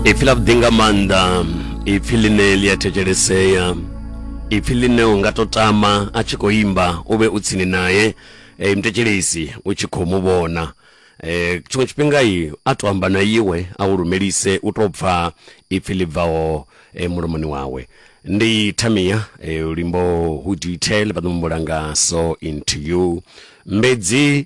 ipfi ḽa vhuḓi nga maanḓa ipfi ḽine ḽi a thetshelesea ipfi ḽine u nga to tama a tshi khou imba u vhe u tsini naye e, mthetshelesi u tshi khou mu vhona e, tshiṅwe tshifhinga i a to amba na iwe a u lumelise u to pfa ipfi ḽi bvaho e, mulomoni wawe ndi thamia e, luimbo hu detail vha ḓo mumbula nga so into you mbedzi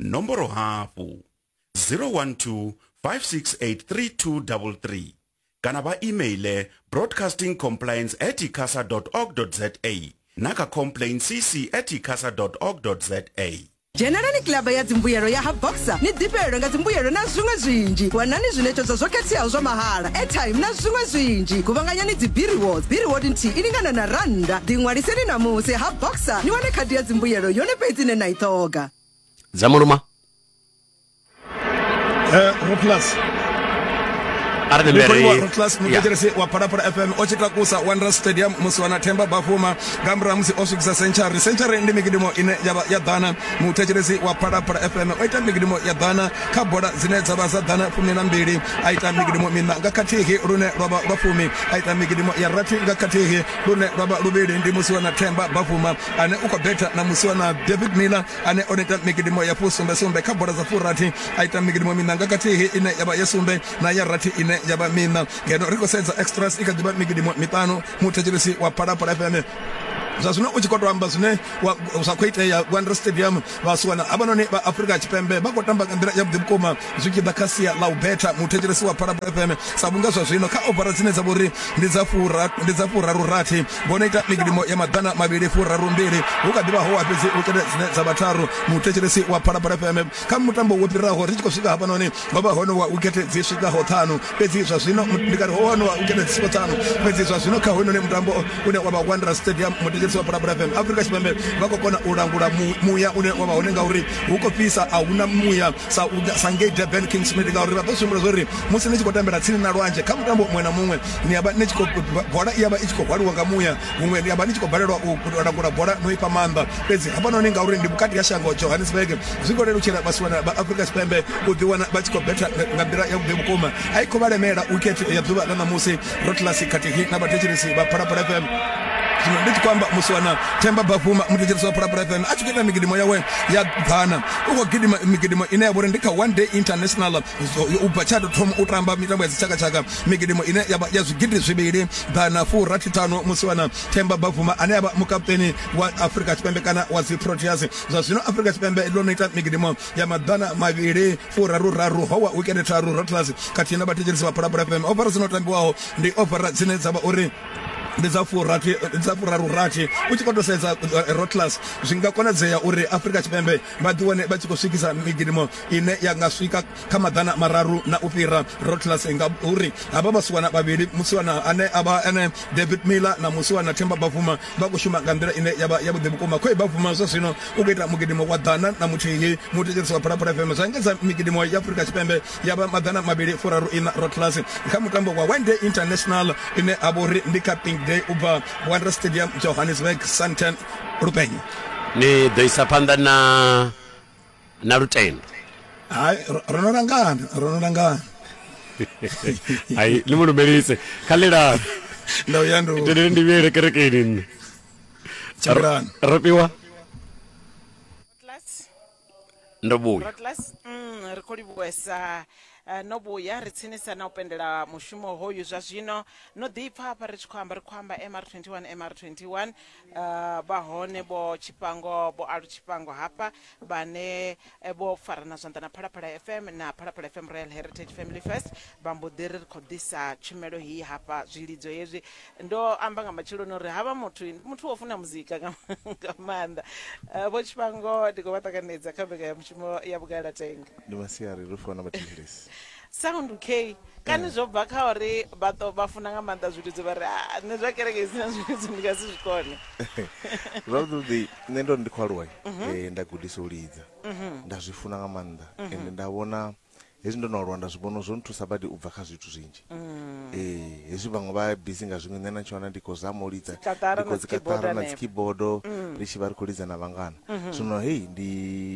nomboro hafhu 012 5683233 kana vha emaile broadcasting compliance at icasa org za na kha complain cc at icasa org za dzhenelani kilaba ya dzimbuyelo ya ha boxer ni ḓifhelelwe nga dzimbuyelo na zwiṅwe zwinzhi wanani zwiṋetshedzo zwo khetheaho zwa mahala airtime na zwiṅwe zwinzhi guvhanganyani dzibiriwods biriwod nthihi i lingana na rannda ḓiṅwaliseni namusi ha boxer ni wane khadi ya dzimbuyelo yone fhedzi ine na i ṱhoga dza muluma eh, roplus arnelwererotlus muteteresi wa phalaphala fm o tshi takusa wanderers stadium musi wana themba bafuma nga murahu musi o swikisa century century ndi mikidimo ine yavha ya ḓana muthetshelesi wa phalaphala fm o ita mikidimo ya ḓana kha bola dzine dza vha dza ḓana fumi na mbili a ita mikidimo mina nga khathihi lune lwa vha lwa fumi a ita mikidimo ya rathi nga khathihi lune lwa vha luvhili ndi musi wana themba bafuma ane u khou betha na musiwa na david miller ane o neta migidimo ya fusumbesumbe kha bola dza furathi a ita migidimo mina nga kathihi ine ya vha ya sumbe na ya rathi ine ya vha mina ngeno ri khou sedza extras i kha ḓivha migidimo miṱanu muthetshelesi wa phalaphala fm zwa zwino u tshi khou to amba zwine zwa khou itea wonder stadium vhasiwana havhanoni vha afurika tshipembe vha khou tamba nga nḓila yavhuḓi vhukuma zwi tshi ḓa kha sia ḽa u betha muthetshelesi wa phalabula fm sa vhunga zwa zwino kha ovara dzine dza vhori ndi dza fura ndi dza furaru rathi vhono ita migidimo ya maḓana mavhili furaru mbili hu kha ḓivha ho fhedzi u kete dzine dza vhatharu muthetshelesi wa phalabula fm kha mutambo wo fhiraho ri tshi khou swika hafhanoni ho vha hono wa u khethe dzi swikaho ṱhanu fhedzi zwa zwino ndi kari ho hono wa u khethe dzi swikaho ṱhanu fhedzi zwa zwino kha hoyunoni mutambo une wa vha wanderers stadium mudededzi wa bulabula fm afrika tshipembe vha khou kona u langula muya une wa vha hone ngauri hu khou fhisa a huna muya sa sa ngei durban king smith ngauri vha ḓo sumbula zwa uri musi ni tshi khou tambela tsini na lwanzhe kha mutambo muṅwe na muṅwe ni ya vha ni tshi khou bola i ya vha i tshi khou hwaliwa nga muya huṅwe ya vha ni tshi khou balelwa u langula bola no ifha maanḓa fhedzi hafhanoni ngauri ndi vhukati ha shango johannesburg zwi khou lelutshela vhasiwana vha afrika tshipembe u ḓiwana vha tshi khou betha nga nḓila ya vhuḓi vhukuma a i khou vha lemela wikhethe ya ḓuvha ḽa ṋamusi rotlasi khathihi na vhathetshelesi vha phalaphala fm zwino ndi tshi khou amba musi wana themba bafuma muthetshelesi wa phalaphala fm a tshi khou ita migidimo yawe ya ḓana u khou gidima migidimo ine ya vha uri ndi kha one day international u bva tsha tou thoma u tamba mitambo ya dzitshakatshaka migidimo ine yavha ya zwigidi zwivhili ḓana furathi ṱhanu musi wana themba bavuma ane avha mukaputeni wa afurika tshipembe kana wa dzi proteas zwa zwino afurika tshipembe ḽo no ita migidimo ya maḓana mavhili furaru raru howa wikende tharu rotlasi khathihi na vhathetshelisi vha phalaphala fm ofara dzino tambiwaho ndi ofara dzine dza vha uri ndi dza furathi dza furaru rathi u tshi koto sedza eh, rotlas zwi nga konadzea uri afurika tshipembe vha ḓiwane vha tshi khou swikisa migidimo ine ya nga swika Kha maḓana mararu na u fhira, Rothless nga u ri, Havha vhasiwana vhavhili, musiwana ane a vha ene David Miller na musiwana Themba Bavuma, vha khou shuma nga nḓila ine ya vha yavhuḓi vhukuma. Khoe Bavuma zwa zwino u khou ita mugidimo wa ḓana na muthihi, muthetshelesi wa Phalaphala FM. Zwa engedza migidimo ya Afurika Tshipembe ya vha maḓana mavhili furaru ina Rothless kha mutambo wa One Day International ine ha vha uri ndi kha Pink Day u bva Wanderers Stadium, Johannesburg, Sandton, Lupeng. Ni ḓo isa phanḓa na na lutendo hai ro no langana ro no langana hai ni mu lumelise kha lilani ndo ya ndo tendeleni ndi vhuyele kerekeni nṋe tshimbilani ro fhiwa Rotlas, ndo vhuya Rotlas, mm, ri khou livhuwesa eh, no vhuya ri tsinisa na u pendela mushumo hoyu zwa zwino no ḓipfa hafha ri tshi khou amba ri khou amba mr 21 mr 21 Uh, vha hone vho tshifhango vho alu tshifhango hafha vhane eh, vho farana zwanḓa na phalaphala fm na phalaphala fm royal heritage family first vha mbo ḓi ri ri khou ḓisa tshumelo hii hafha zwilidzo hezwi ndo amba nga matsheloni uri havha muthu ndi muthu wo funa muzika nga nga maanḓa Eh, vho tshifhango ndi khou vha ṱanganedza kha mbekanyamushumo ya vhugalatenga ndi masiari ri fana mathetshelesi Sound Kay, Kani zwo bva kha uri vha to vha funa nga maanḓa zwilidzo vha ri a nṋe zwa kereke i si na zwilidzo ndi nga si zwi kone? Zwavhuḓi nṋe ndo ri ndi khou aluwa nda gudiswa u lidza nda zwi funa nga maanḓa ende nda vhona hezwi ndo no aluwa nda zwi vhona zwo nthusa badi u bva kha zwithu zwinzhi. Hezwi vhaṅwe vha busy nga zwiṅwe nṋe na tshi wana ndi khou zama u lidza ndi khou tsikaṱara na dzi keyboard ri tshi vha ri khou lidza na vhangana zwino hei ndi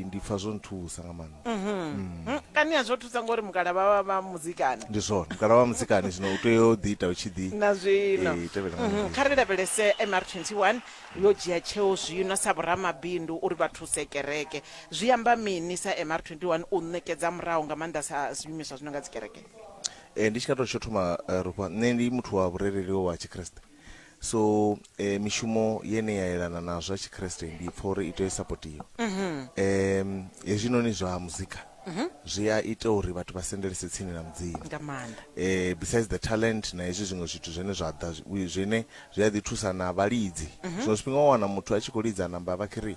ndi pfha zwo nthusa nga maanḓa. Mm, kani a zwo thusa ngori mukala vha vha vha muzikani ndi zwone mukala wa musikani zwino u tea u ḓi ita u tshi ḓi na zwino Eh, tevhela nga Mhm, muvhili. kha ri lavhelese mr 21 yo dzhia tsheo zwino sa vhoramabindu uri vha thuse kereke zwi amba mini sa mr 21 u ṋekedza murahu nga maanḓa sa zwiimiswa zwi no nga dzikereke Eh, ndi tshi nga tou tsho thoma eh, rufha nṋe ndi muthu wa vhurereli wa tshikriste so eh, mishumo yene ya yelana na zwa tshikriste ndi pfa uri i tea u sapotiwa um hezwinoni zwa muzika zwi a ita uri vhathu vha sendelese tsini na mudzimu nga maanḓa eh besides the talent na hezwi zwiṅwe zwithu zwine zwa ḓa zwi- zwine zwi a ḓi thusa na vhalidzi zwiṅwe zwifhinga wa wana muthu a tshi khou lidza namba vha khiri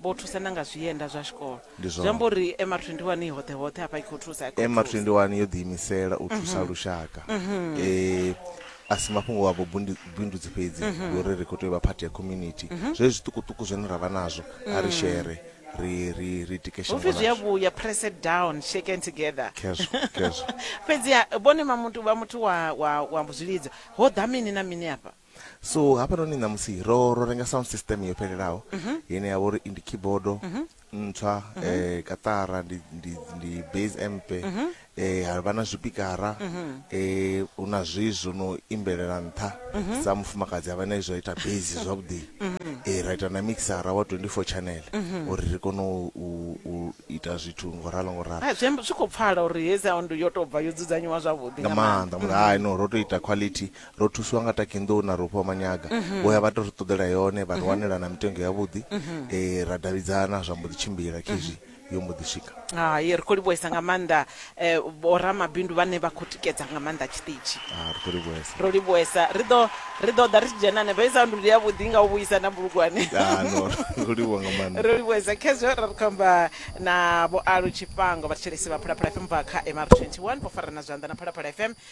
Vho thusa na nga zwienda zwa tshikolo. Ndi zwone. Zwi amba uri MR 21 i hoṱhe hoṱhe hafha i khou thusa, i khou MR thusa. 21 yo ḓiimisela u thusa lushaka. E, a si mafhungo a vhubundu- vhubindudzi fhedzi, ndi uri ri khou tea u vha phathi ya community. Zwezwi zwiṱukuṱuku zwine ra vha nazwo, a ri shere, ri, ri, ri tike Hu shango pfi zwi a ḽashu. vhuya, press it down, shaken together. Khezwo, khezwo. Fhedziha vhone vha muthu, vha muthu wa, wa, wa zwilidzo, ho ḓa mini na mini afha? so hafhanoni ṋamusi ro ro renga sound system yo fhelelaho mhm. ine ya vha uri ndi keyboard mhm. ntswa um mhm. eh, katara ndi, ndi, ndi base amp um eh, ha vha na zwipikara um eh, hu na zwi zwo no imbelela nṱha sa mufumakadzi a vha na izwo ita base zwavhuḓi e ra ita na mixara wa 24 channel uri ri kone u ita zwithu ngo ralo ngo ralo ah, zwi khou pfala uri he sound yo tou bva yo dzudzanyiwa zwavhuḓi nga maanḓa mura hai no ro tou ita quality ro thusiwa nga takinḓou na rofhiwa manyaga mhm. vho ya vha to ri ṱoḓela yone vha ri mhm. wanela na mitengo yavhuḓi um mhm. eh, ra davhidzana zwa mbo ḓi tshimbila khezwi yo mbo ḓi swika hai ri khou livhuhesa nga maanḓa um vho ramabindu vhane vha khou tikedza nga maanḓa tshiṱitshi ah, ri khou livhuhesa ro livhuhesa ri ḓo ri ḓo ḓa ri tshi dzhenane vha isa nduli ya vhuḓi nga u vhuisa na bulugwane ah, ro livhuha nga maanḓa ro livhuhesa khezwo ra ri khou amba na vho alu tshifhango vhathetshelesi vha phalaphala fm bva kha mr 21 vho farana zwanḓa na phalaphala fm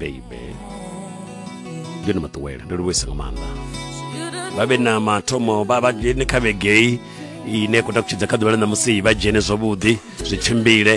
baby yo ni maṱuwela ndo livhuisa nga maanḓa vha vhe na mathomo vha vha dzhene kha vhegei ine khou takutshidza kha ḓuvha ḽa ṋamusi vha dzhene zwavhuḓi zwi tshimbile